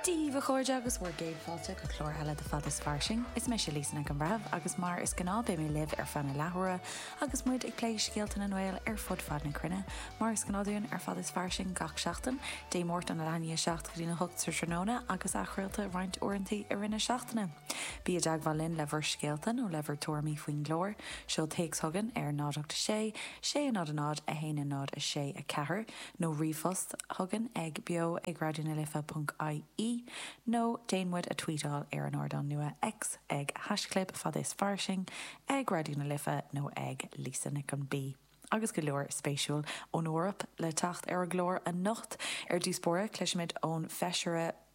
Dia dhaoibh a chairde agus bhur gcéad fáilte go clár eile de Fad is Fairsing. Is mise Lisa Nic an Bhreithimh agus mar is gnáth beidh mé libh ar feadh na leathuaire agus muid ag plé scéalta na nGael ar fud fad na cruinne, mar is gnáth dúinn ar Fad is Fairsing gach seachtain, Dé Máirt ón leathuair tar éis a 7 go dtí a hocht sa tráthnóna agus athchraolta roinnt uaireanta i rith na seachtaine. Bí i dteagmháil linn le bhur scéalta nó le bhur tuairimí faoin gclár, seol téacs chugainn ar 086 600 1014 nó ríomhphost chugainn ag beo ag raidió na life ponc ie nó déan muid a tweetáil ar an ardán nua X ag hashchlib fad is fairsing ag raidió na life nó ag Lisa Nic an B agus go leor spéisiúil ón Eoraip le teacht ar an gclár anocht. Ar dtús báire cloisfimid ón feisire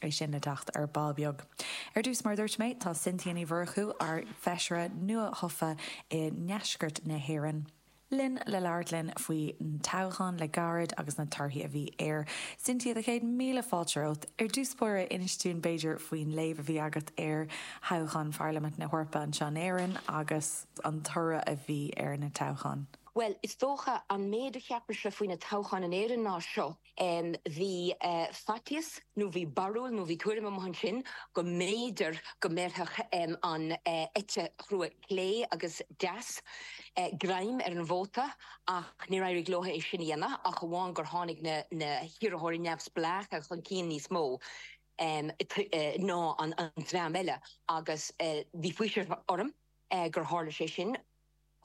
é sin le teacht ar ball beag. Ar dtús, mar a dúirt mé, tá Cynthia Ní Mhurchú, ár bhfeisire nua-thofa i nDeisceart na hÉireann, linn le labhairt linn faoin toghchán le gairid agus na torthaí a bhí air. Cynthia, do chéad míle fáilte romhat. Ar dtús báire, inis dúinn, b'fhéidir, faoin léamh a bhí agat ar thoghchán Pharlaimint na hEorpa anseo in Éirinn agus an toradh a bhí ar na toghcháin. Bhuel, is dócha, an méid a cheapais-se faoi na toghcháin in Éirinn ná seo, Bhí faitíos nó bhí barúil nó bhí tuairim amuigh ansin go mb'fhéidir go mbéarfadh an eite chrua clé agus deas greim ar an vóta ach níor éirigh leo é sin a dhéanamh ach amháin gur tháinig na hiarrthóirí neamhspleácha chun cinn níos mó ná an dream eile agus bhí faoiseamh orm gur tharla sé sin.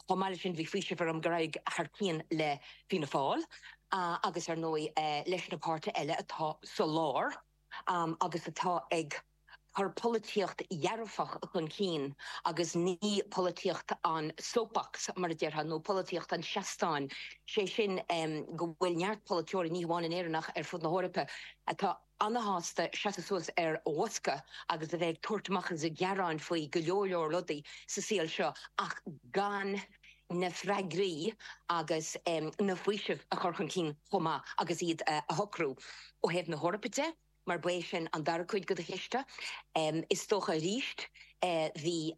Chomh maith leis sin bhí faoiseamh orm gur éirigh thar cionn le Fianna Fáil agus ar ndóigh leis na páirtithe eile atá sa lár agus atá ag cur polaitíocht dhearfach chun cinn agus ní polaitíocht an soapbox mar a déarfá nó polaitíocht an tseastáin, sé sin go bhfuil neart polaiteoirí, ní hamháin in Éirinn ach ar fud na hEorpa, atá. ana-shásta seasamh suas ar bhosca agus a bheith ag tabhairt amach is ag gearáin faoi go leor leor rudaí sa saol seo ach gan na freagraí agus na faoisimh a chur chun cinn chomh maith agus iad a shocrú ó thaobh na hEorpa de mar ba é sin an dara cuid de do cheist. Is dócha arís bhí.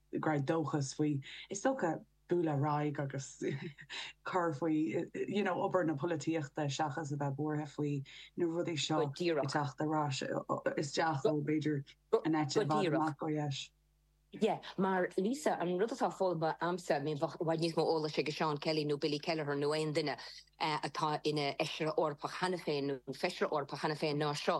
go raibh dóchas faoi. Is dócha, bualadh ar aghaidh agus cur faoi you know obair na polaitíochta seachas a bheith buartha faoi na rudaí seo ag teacht ar ais isteach ó b'fhéidir an eite i bhfad amach ó dheis. Yeah, mar Lisa, an rud atá foghlamtha a'msa, I mean bheadh i bhfad níos mó eolais ag Seán Kelly nó Billy Kelleher nó aon duine atá ina fheisire Eorpach cheana féin nó feisire Eorpach cheana féin ná seo.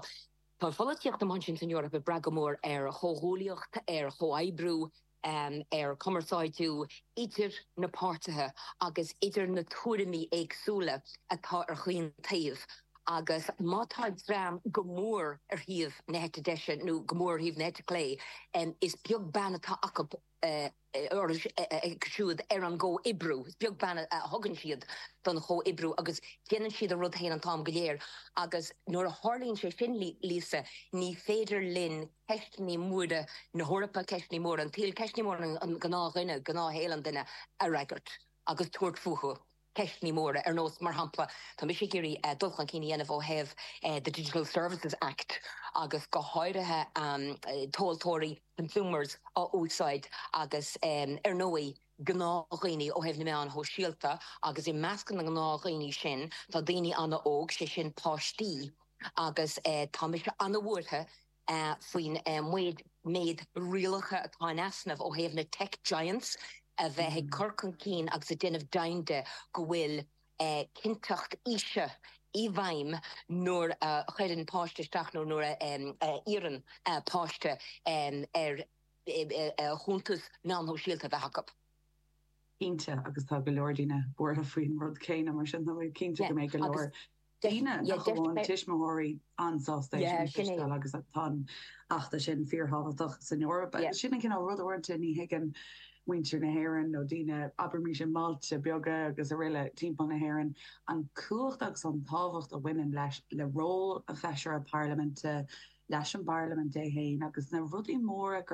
Tá an pholaitíocht atá againn san Eoraip ag brath go mór ar chomhghuaillíocht, ar chomhoibriú, ar chumarsáidiú idir na páirtithe agus idir na tuairimí éagsúla atá ar chaon taobh agus má tá dream go mór ar thaobh na heite deise nó go mór ar thaobh na heite clé is beag beann atá acu acu siúd ar an gcomhoibriú. Is beag beann a thugann siad don chomhoibriú agus déanann siad a rud féin an t-am go léir agus nuair a tharlaíonn sé sin, Lisa, ní féidir linn ceisteanna móra na hEorpa, ceisteanna móra an tsaoil, ceisteanna móra an ghnáthdhuine, gnáthshaol an duine, a fhreagairt agus tabhairt fúthu. ceisteanna móra ar nós, mar shampla, tá mise ag iarraidh dul chun cinn a dhéanamh ó thaobh the Digital Services Act agus go háirithe tomhaltóirí, consumers, a úsáid agus ar ndóigh gnáthdhaoine ó thaobh na meáin shóisialta agus i measc na ngnáthdhaoine sin tá daoine an-óg, sé sin páistí agus tá mise an-bhuartha. faoin méid méid rialacha atá in easnamh ó thaobh na tech giants a bheith ag cur chun cinn agus ag déanamh deimhin de go bhfuil cinnteacht aoise i bhfeidhm nuair a chuireann páiste isteach nó nuair a iarrann páiste ar chuntas meán shóisialta a bheith acu. Cinnte, agus tá go leor daoine buartha faoin rud céanna, mar sin tá mé cinnte go mbeidh go leor. daoine nach amháin tuismitheoirí an-sásta leis sin a chloisteáil agus tá an feachtas sin fíorthábhachtach san Eoraip. Sin an cineál ruda uaireanta ní thuigeann muintir na hÉireann nó daoine, abraimis i mbailte beaga agus araile timpeall na hÉireann, an cumhacht agus an tábhacht a bhaineann le ról an Fheisire Parlaiminte, leis an bParlaimint í féin agus na rudaí móra gur.